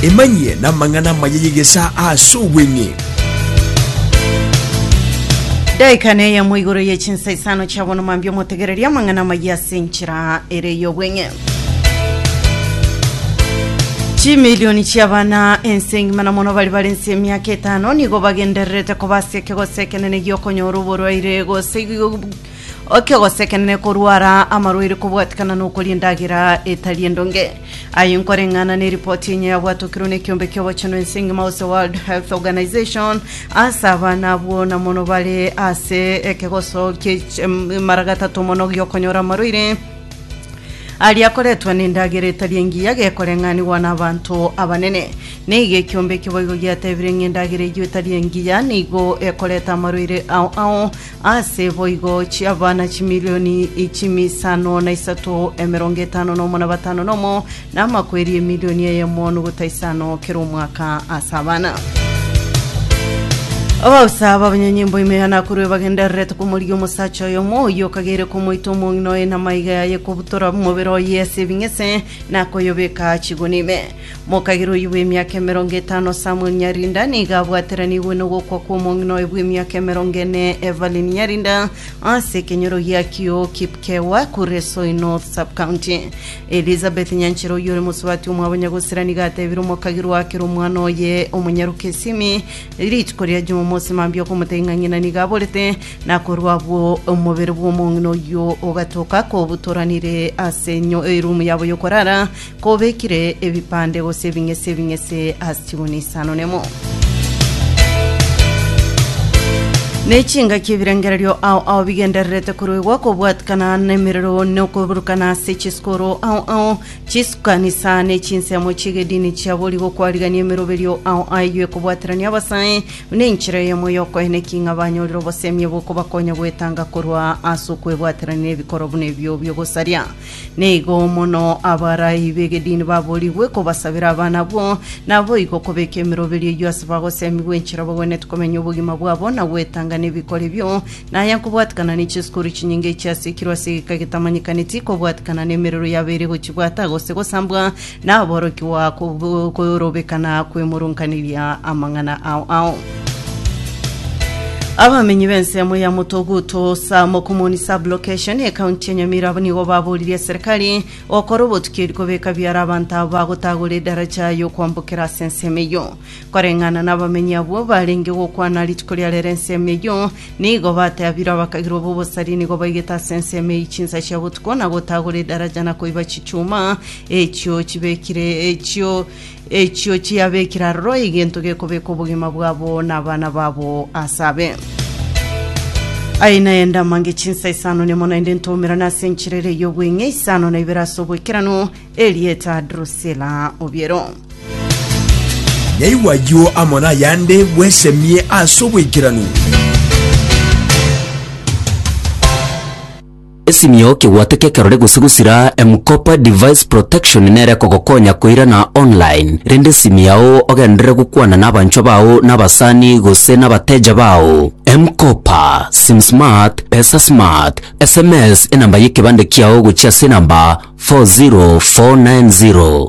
Emanyie namang'ana amaya y'egesaa aase obweng'e. Daika neyemo igoro ye chinsa isano chia bono mambia omotegererie amang'ana amaya ase enchera ere y'obweng'e. Chimilioni chi'abana ense engima na mono bari bare nse y'emiaka etano nigo bagendererete koba ase ekegose ekenene gi'okonyora oborwaire gose Oke ogosekenene korwara amarwaire kobwatikana nokoria endagera etari endonge. Aye nkoreng'ana neripoti enye yabwatokirwe nekiombe kiobochenu ense ngima gose World Health Organization ase abana abwo na mono bare ase ekegoso kie mara gatato mono giokonyora amarwaire aria akoretwa nendagera etari engiya gekoreng'anigwa na abanto abanene. Neiga ekiombe ekio boigo giatebire ng'a endagera eyio etari engiya nigo ekoreta amarwaire ao ao Aase boigo chi'abana chimilioni chi'misano na isato, emerongo etano nomo na batano nomo, na amakweri emilioni eyemo nogota isano kera omwaka ase abana. Abausa b'abanyanyimbo imegana akorwe bagendererete komorigia omosacha oyomo oyio okagere komoita omong'ina oye namaiga yaye kobutora omobere oye ase ebing'ese nakoyobeka chiguni ime Mokagera oyio bw'emiaka emerongo etano Samueli Nyarinda nigo abwateranigwe nogokwa kw'omong'ina oye bw'emiaka emerongo ene Evelyn Nyarinda ase ekenyoro gia Kio Kipkewa Kuresoi North Sub-County. Elizabeth Nyanchera oyio ore mosubati omwabo Nyagosera nigo atebire omokagirwa akere omwana oye omonyaruka esimi rituko ria Jumamosi mambia okomotebia ng'a ng'ina nigo aborete na korwa abwo omobere bw'omong'ina oyio ogatoka kobutoranire ase enyo- erumu yabo y'okorara Kobekire ebipande gose ebing'ese ebing'ese ase chiguni isano nemo. Nechingaki ebirengererio ao ao bigendererete koruegwa kobwatikana nemerero nokoburukana ase chisikoro ao ao chisukanisa ne chinsemo chiegedini chia borigo kwarigania emeroberio ao ayio ekobwaterania abasae buna enchera eyemo yokoena eking'a banyorire obosemi obokobakonya gwetanga korwa ase okwebwaterania nebikoro buna ebio biogosaria Nigo mono abarai b'egedini baboorigwe kobasabera abana abwo, naboigo kobeka emeroberio eyio ase bagosemigwa enchera bagwenerete komenya obogima bwabo na gwetanga nebikore ebio. Na aya nkobwatikana ne chisukuru chinyinge chiasiikirwe ase egeka getamanyekaneti, kobwatikana nemerero yabeire gochibwata gose gosambwa, Naborokigwa kw'okorobekana kw'emorong'aneria amang'ana ao ao. Abamenyi b'ensemo ya Motoguto sa Mokomoni Sub-Location ekaunti ya Nyamira abwo nigo baboririe eserekari gokora obotuki eri kobeka biara abanto abo bagotagora edaraja y'okwambokera ase ensemo eyio. Koreng'ana nabamenyi abwo barenge gokwana rituko ria rero ensemo eyio nigo bateabirwe abakagirwa b'obosari nigo baigete ase ensemo eyio chinsa chia botuko na gotagora edaraja na koiba chichuma Echio chibekire, echio, echio chiabekire aroro egento gekobeka obogima bwabo na abana babo ase abe. Aye naye ndamange chinsa isano nemo naende ntoumerane ase enchera ere y'obweng'e isano na ibere ase oboikeranu, Erieta Drusila Obiero. Nyaigwa ayio amo nayande bwesemie ase oboikeranu. Esimio kegwate kekerore gose gosira M-Kopa Device Protection nere ekogokonya koirana online, rende esimi yao ogenderere gokwana nabanchwa bao nabasani gose nabateja bao. M-Kopa, SimSmart, PesaSmart, sms enamba yekebande kiao gochia ase enamba 40490.